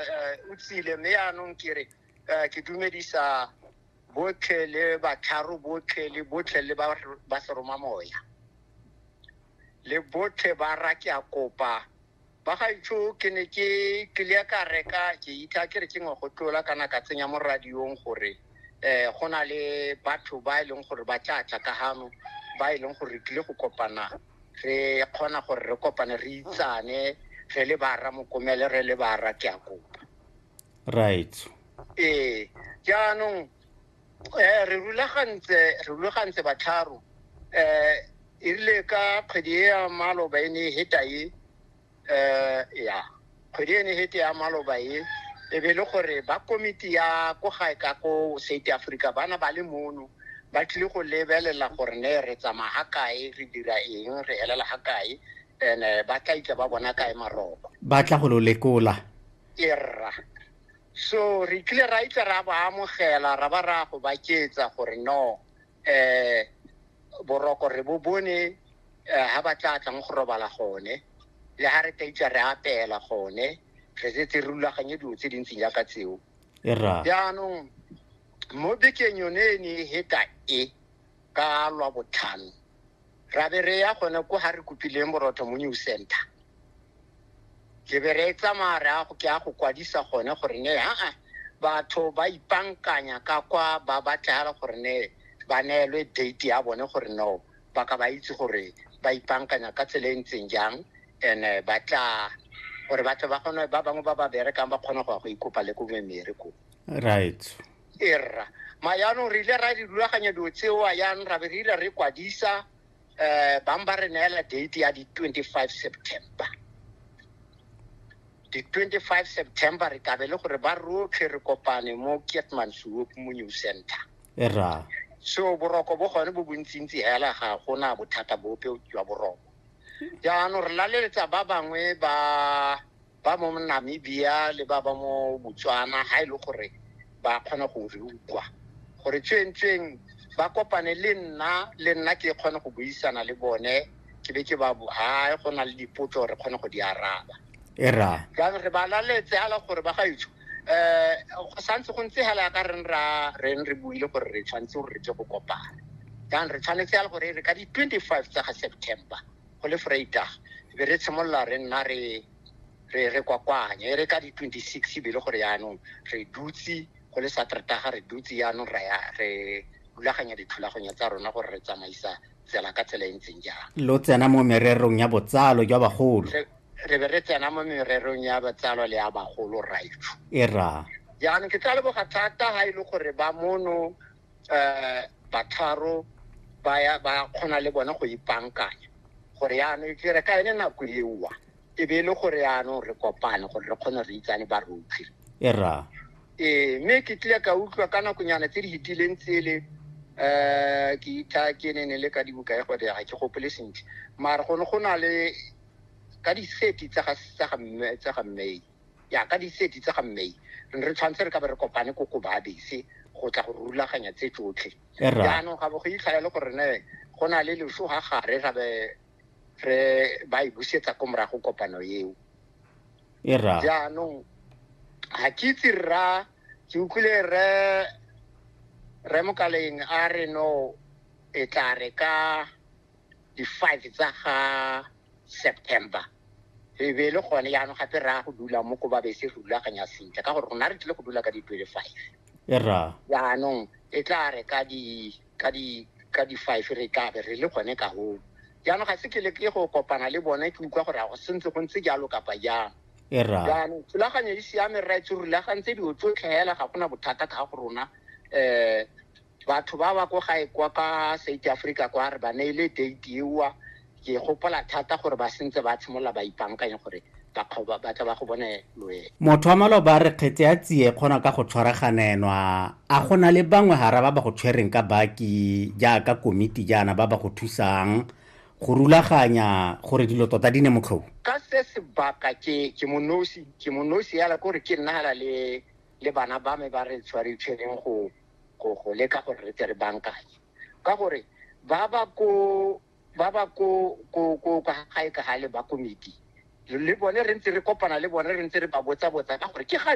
eh, o tsile mme yaanong ke re eh, ke dumedisa botlhe le batlharo botlhe le botlhe le ba ba seroma moya le botlhe ba ra ke a kopa ba gaitsho ke ne ke tlile ka reka ke itha ke re ke ngwe go tlola kana ka tsenya mo radiong gore um go na le batho ba e leng gore ba tla tla ka gano ba e leng gore re tlile go kopana re kgona gore re kopane re itsane re le bara mokomele re le bara ke a kopa right ee jaanong um re rulagantse re rulagantse batlharo um e rile ka kgwedi e ya maloba e ne e heta e um ya kgwedi e ne hete ya maloba e e be le gore ba komiti ya ko gae ka ko south africa bana ba le mono ba tlile go lebelela gore ne re tsamaya ga kae re dira eng re elela ga kae and eh, ba tla itla ba bona kae maroko ba tla go lo lekola erra so re tlile ra itla ra ba amogela ra ba ra go baketsa gore no eh boroko re bo bone eh, ha ba tla tlang go robala gone le ha re tla itsa re apela gone re setse re rulaganye dilo tse dintsi jaaka tseo e ra jaanong mo bekeng yone e ne e heta e ka lwa botlhano ra be re ya gone ko ga re kopileng borotho mo new center ke be re tsamaya re a go ke a go kwadisa gone gore ne aa batho ba ipankanya ka kwa ba batlegala gore ne ba neelwe date ya bone gore no ba ka ba itse gore ba ipankanya ka tsela e ntseng jang and eh, ba tla gore batho ba kgone ba bangwe ba ba berekang ba kgone go ya go ikopa le ko memere ko right erra ma yaanong re ile ra di rulaganya dilo tsewa yang ra be re ile re kwadisa um bang ba re neela date ya di-twenty-five september di-twenty-five september re kabe le gore ba rotlhe re kopane mo kietman suop mo new center erra so boroko bo gone bo bontsintsi hela ga gona bothata bope jwa boroko jaanong re laleletsa ba bangwe ba ba mo Namibia le ba ba mo Botswana ga e le gore ba kgona go re ukwa gore tsweng-tsweng ba kopane le nna le nna ke kgone go buisana le bone ke be ke ba ha go na le dipotso re kgone go di araba e ra jaanong re ba laletse ala gore ba ga itso eh go santse go ntse hela ka re ra re re buile gore re tshwanetse gore re tle go kopana jaanong re tshwanetse ya gore re ka di 25 tsa ga September go le freitag e be re tshimolola re nna re re re kwakwanye e re ka di-twenty-six be le gore yaanong re dutse go le sateretaga re dutse yaanong ra ya re rulaganya dithulaganyo tsa rona gore re tsamaisa tsela ka tsela e ntseng jang lo tsena mo mererong ya botsalo jwa bagolo re re be re tsena mo mererong ya botsalo le ya bagolo raifu e ra jaanong ke tla leboga thata ga e le gore ba mono um batharo ba ya ba kgona le bone go ipankanya gore yaanong ke re ka ene nako eoa e be e le gore yaanong re kopane gore re kgone re itsane ba rotlhe era ee mme ke tlile ka utlwa ka nakonyana tse di fetileng tsele um ke itha ke ne ne le ka dibuka e gode ga ke gopole sentle mare go ne go na le ka di-thirty tsa ga tsa ga mme tsa ga mmei ya ka diseti tsa ga mmei re ne re tshwanetse re ka be re kopane ko ko baabese go tla go rulaganya tse tsotlhe Erra. jaanong ga bo go itlhela le gore ne go na le leso ga gare ra be re ba e busetsa ko morago kopano eo e ra jaanong ga ke itse rra ke utlwile re re mokaleng a re no e tla re ka di-five tsa ga september e be e le gone yaanong gape raya go dula mo ko babe se rulaganya sentle ka gore rona re tlile go dula ka di-twenty five e ra yaanong e tla re ka di ka di ka di-five re tla be re le gone ka goo jaanong ga se ke le ke go kopana le bone ke utlwa gore a go sentse go ntse jalo kapa jang e ra jaanong thulaganyo e siame rra e tse rulagantse dilo tsotlhe hela ga gona bothata ka go rona um batho ba ba ko gae kwa ka south africa kwa re ba neile date ewa ke gopola thata gore ba sentse ba tshimolola ba ipankanye gore ba batla ba go bone loe motho wa maloba re kgetse ya tsie kgona ka go tshwaraganenwa a go na le bangwe gara ba ba go tshwereng ka baki jaaka komiti jaana ba ba go thusang go rulaganya gore dilo tota di ne motlhou ka se sebaka ke ke monosi ke monosi yala kore ke nna le le bana ba me ba re tshwaritshwereng go go go leka gore re tle re bankanye ka gore ba ba ko ba ba ko ko ko ka gae ka gale ba komiti le bone re ntse re kopana le bone re ntse re ba botsa botsa ka gore ke ga